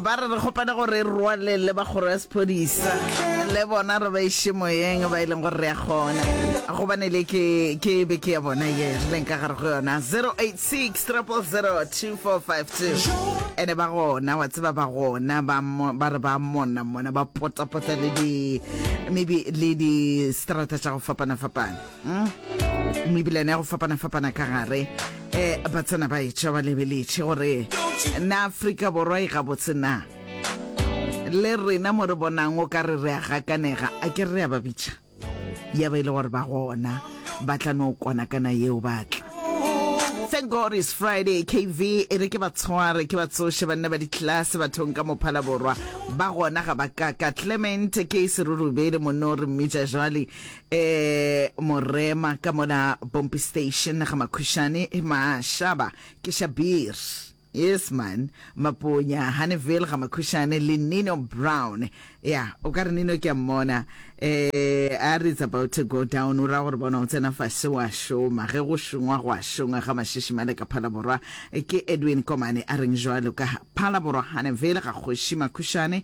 ba re re kgopane gore e rwale le ba kgoro ya sephodisa le bona re ba iše moyeng ba e leng gore re ya kgona gobane le ke ke be ke ya bona ye re leng ka gare go yona 086 2452 ene ba gona wa tseba ba gona ba mo- ba re ba monna mona ba potapota le di maybe le di strata tša go fapana-fapana hmm? mebilane ya go fapana-fapana ka gare um ba tsena ba etša ba lebeletše gore na afrika borwa e gabotse na le rena mo re bonang o ka re re a gakanega a ke re a ba bitša ya ba e le gore ba gona ba tla no kwana kana yeo batla thank god is friday kv e re ke ba tshware ke ba tsoše banna ba ditlelase bathong ka mophala borwa ba gona ga ba kaka clement ke serurubele monno re mmitša jale Ee, Morema, ka mona Pompi Station, ga Makhušane, Mašaba, ke Shabir. Yes, man. Maponya, Honeyville, ga Makhušane, le Nino Brown. Ya, o ka re Nino ke a mmona. Eh, a re it's about to go down, o ra gore bona o tsena fase wa šoma. Ge go šongwa go a šongwa ga mašiši male ka Phalaborwa. Ke Edwin Komane a reng jwalo ka Phalaborwa, Honeyville, ga Kgoši Makhušane.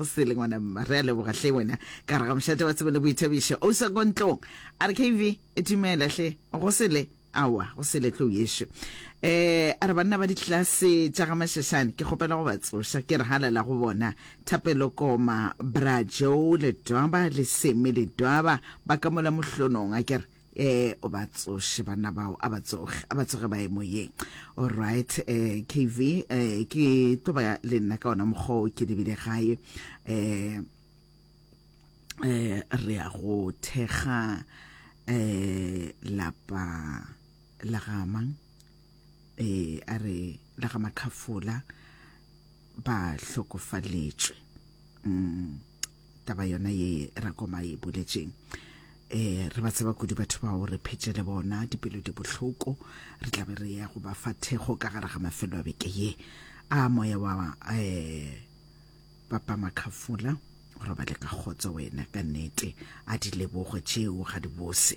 go sele ngwana mma re a leboga hle wena ka re ga mošate wa tsebo le boithabišo o sa kontlong a re kv e dumela hle go sele awa go sele tlo yešo eh a re banna ba ditlase tša ga mashashane ke kgopela go ba tsoša ke re halela go bona thapelo koma brajo le dwaba le seme le dwaba ba ka mola mohlonong a kere eh o ba tsoše banna bao a ba tsoge a ba tsoge ba emo ye all right eh kv eh ke tlo ba le nna ka ona mokgwa o ke lebile gae eh eh re ya go thekga eh lapa la gamang eh a re la ga makhafola ba hlokofaletšwe mm, taba yona ye rakoma e boletšeng eh re ba tseba kudu batho bao re phetse le bona dipelo di bohloko re tla be re ya go ba fa thekgo ka gare ga mafelo a beke ye a moya wa eh papa makhafola go robale ka kgotso wena ka nnete a di lebogo tšeo ga di bose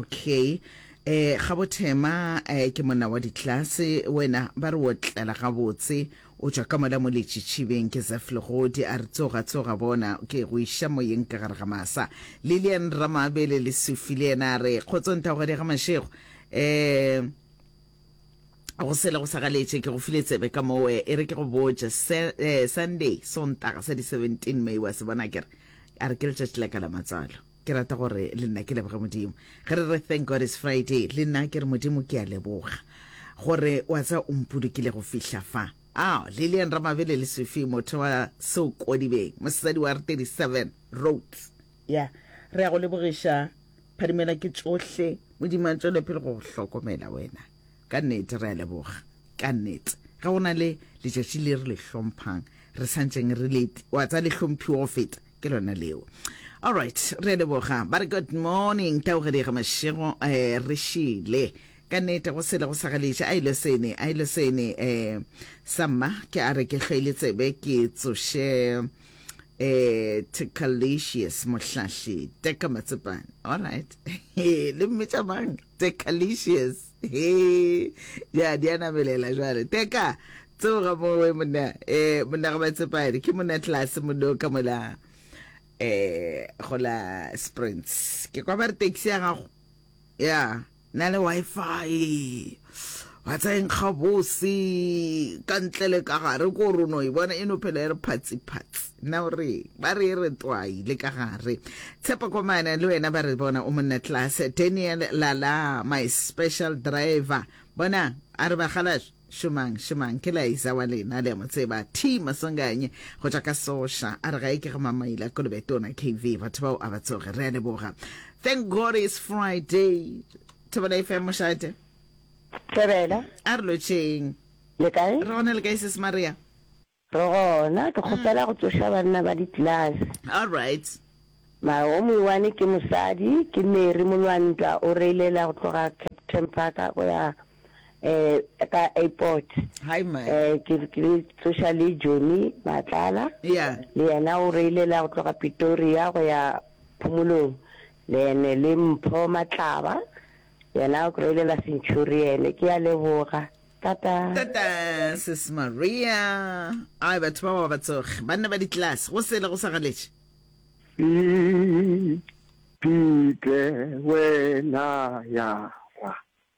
okay eh ga bothema eh ke monna wa ditlase wena ba re o tlela gabotse o tswa ka mola mo letšitšhibeng ke zef legodi a re tsoga tsoga bona ke go iša moyeng ka gare ga masa lilian ramabele le sufi le yena a re kgotsong tagogadi ya ga mashego eh go sele go sagaletše ke go file tsebe ka mowe e re ke go botša eh, sunday sontaga sa di-17 may wa se bona kere a re ke letšatši la ka la matswalo Ke rata gore le nna ke leboge Modimo. Ge re re Thank God It's Friday, le nna ke re Modimo ke a leboga gore wa tsa o mpolokile go fihla fa. Ao, Lillian Ramabele le Sufi motho wa Seokodibeng, mosadi wa re 37 Roads. Ya, re a go lebogiša Phadimela ke tšohle, Modimo a tšwele pele go go hlokomela wena. Ka nnete re a leboga. Ka nnete. Ge go na le letšatši le re le hlomphang, re santšeng re le, wa tsa le hlomphiwa go feta. ke lona leo allright re leboga ba re good morning taogedega mašego um eh, re šile ka nete go sele go sa galeša a ile sene a ile sene um eh, sa mma ke a re ke hlwele tsebe ke tsoše um eh, tecalicious mohlahli teka matsepane allright le mmetša mang tecalicious Hee, ya di a namelela jwale. Teka, tsoga mo we monna, eh monna ga ba tsepane. Ke monna tlase monna ka mola eh go la Springs. Ke kwa ba re taxi ya gago. Ya, na le wifi. Wa tsayeng ga bosi ka ntle le ka gare ko rono e bona e no phela e re phatsi phatsi. Na o re, ba re e re twai le ka gare. Tshepo Komane le wena ba re bona o monna class. Daniel Lala, my special driver. Bona, a re bagalash, šomang, šomang, ke Laiza wa lena, le a mo tseba. T Masonganye, go tšwa ka Sosha, a re ga e ke ga Mamaila Kolobe Tona KV, batho bao a ba tsoge. Re a leboga. Thank God it's Friday. Thobela FM mošate. Thobela. A re lotšheng. Le kae? Re gona le kae sis Maria? Re gona, ke kgopela go tsoša banna ba ditlelase. All right. Mara wo moiwane ke mosadi, ke Mary Molwantwa, o reilela go tloga Kempton Park go ya eh ka airport. Hi man. Eh ke ke tsoša le Johnny Matlala. Yeah. Le yena o reilela go tloga Pretoria go ya Phomolong. Le ene le Mpho Matlaba, yena o reilela Centurion. Ke a leboga. Tata. Tata sis Maria. Ai batho ba ba ba tsoge. Banna ba ditlelase go sele go sa galetše. Pete wena ya ra